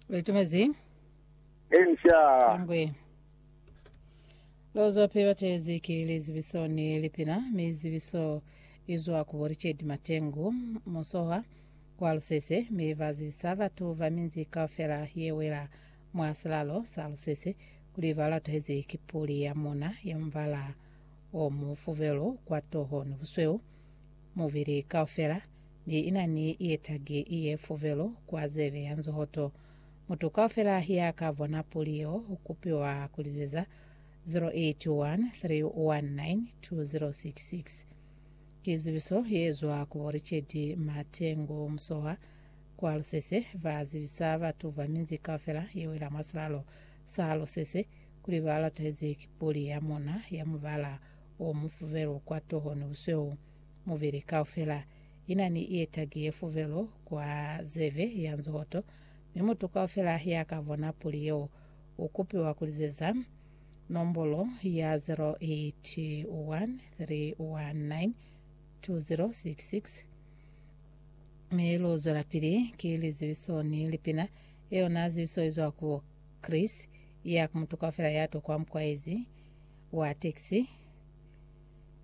Litumezi. Inca. Kangwe. Lozwa pe batezi ki lizibiso ni lipina, mi zibiso izwa ku bo Richard Matengu, musohwa kwa Lusese, mi ba zibisa batu ba minzi kaufela ye wela mwa silalo sa Lusese kuli ba latuhezi ki puli ya muna ya mubala o mufubelu kwa toho ni busweu mubili kaufela, mi ina ni ye tagi ye fuvelu kwa zebe ya nzohoto. Mutu kaufela ya ka bona puli yeo u kupiwa ku lizeza 0813192066. Ki zibiso ye zwa ku bo Richard Matengu Musoha kwa Lusese, ba zibisa batu ba minzi kaufela ye wela mwa silalo sa Lusese kuli ba latwezi ki puli ya muna ya mubala o mufuvelu kwa toho ni busweu. Muvili kaufela ina ni ietagi ye fuvelo kwa zeve ya nzohoto, mi mutu kaufela ya ka bona puli yeo u kupiwa ku lizeza nombolo ya 0813192066. Mi lu zwelapili ki lizibiso ni lipina, ye yona zibiso izwa ku Chris, ya ku mutu kaufela ya tokwa mukwaezi wa taxi.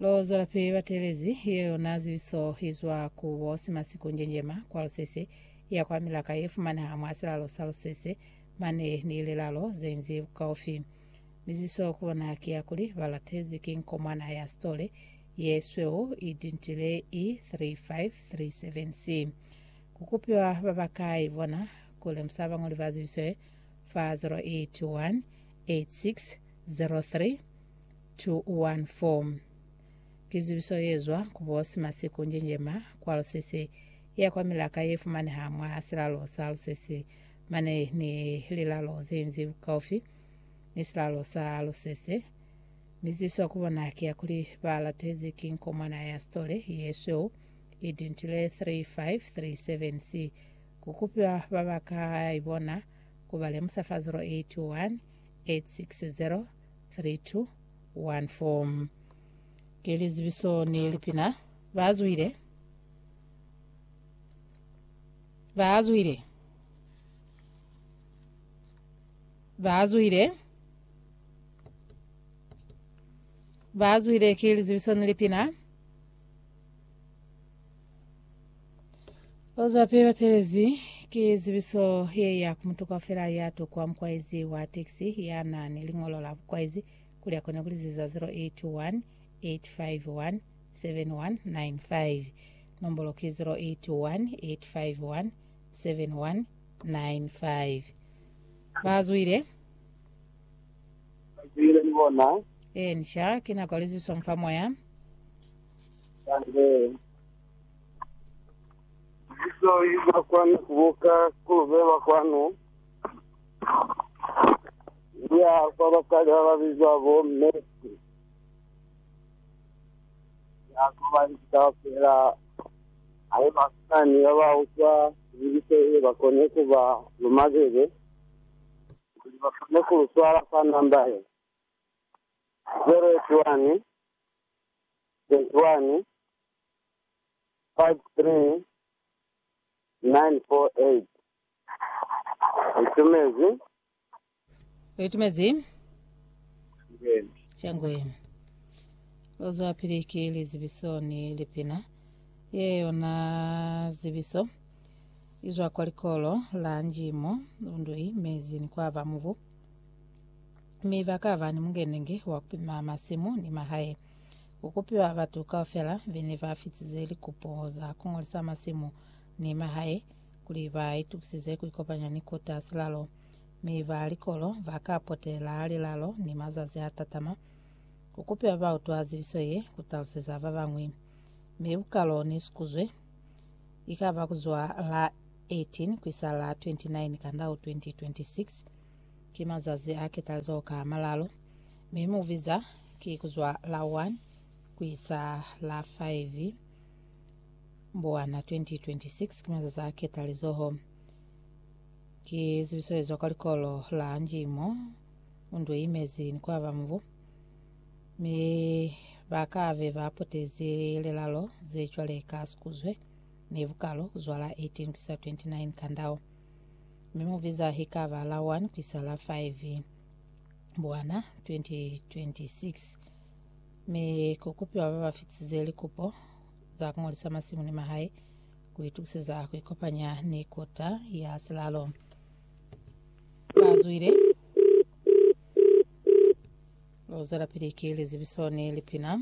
Lo zwelapili batelezi ye yona zibiso i zwa ku bo Simasiku Njenjema kwa Lusese ya kwa Milaka ye fumaneha mwa silalo sa Lusese mane ni lilalo ze nzi bukaufi. Miziso ku bona ki ya kuli ba latezi ki nkomwana ya sitole ye sweu i dintile i 3537C. Ku kupiwa ba ba ka i bona ku lemusa bañoli ba zibiso ye fa 0818603000. 214. Ki zibiso ye zwa ku bo Simasiku Njenjema kwa Lusese ya kwa Milaka ye fumaneha mwa Silalo sa Lusese mane ni lilalo ze nzi bukaufi ni Silalo sa Lusese, mi zibiso ku bona ki ya kuli ba latezi ki nkomwana ya sitole ye sweu i Dintile 3537 C. Ku kupiwa ba ba ka ibona ku ba lemusa fa 081 860 3214 Ki lizibiso ni lipina Ba zwile Ba zwile Ba zwile Ba zwile Ki lizibiso ni lipina Ozape batelezi ki zibiso ye ya ku mutu kaufela ya tukwa mukwaizi wa tekisi ya na ni liñolo la bukwaizi kuli akone kuliziza 081 851 7195 nombolo ki 081 851 7195 bazwile Zwile ni bona. e nisha ki nako ya lizibiso mufa moya Kale, libizo li ba kwanu ku buka ku lu beba kwanu, li ya kwa basali ba ba bizwa bo Mercy, ya ku ba inzi kaufela haiba ku na ni ba ba utwa libizo le ba koni ku ba luma bebe, kuli ba kone ku lu swala kwa namba ye 081 Lu itumezi. Lu itumezi. Shangweni. Lu zwapili ki lizibiso ni lipina. Ye yona zibiso izwa kwa likolo la njimo, lundui, mezi ni kwa ba mubu. mi ba ka ba ni mukenenge wa ku pima masimu ni mahae. Ku kupiwa batu kaufela be ne ba fitize likupo za ku ngolisa masimu ni mahae kuli ba itukisize ku ikopanya ni kota silalo, mi ba likolo ba ka potela lilalo ni mazazi a tatama. Ku kupiwa ba utwa zibiso ye ku taluseza ba bañwi, mi bukalo ni sikuzwe i ka ba ku zwa la 18 ku isa la 29 Kandau 2026. Ki mazazi a ketazo ka malalu, mi mu biza ki kuzwa la 1 kuisa la 5 Mbuwana 2026. Ki mazazi a ketalizoho. Ki zibiso ezwa kwa likolo la Njimo Undwe Imezi ni kwaba mubu, mi ba kabe ba potezi lilelalo ze cwale ka sikuzwe ni bukalo kuzwa la 18 kuisa 29 ka ndau. mi mu biza hikaba la 1 kuisa la 5 Mbwana 2026, mi ku kupiwa ba ba fitize likupo za ku ngolisa masimu ni mahae ku itukiseza ku ikopanya ni Kota ya Silalo. Ba zwile lu zwelapili ki lizibiso ni lipina.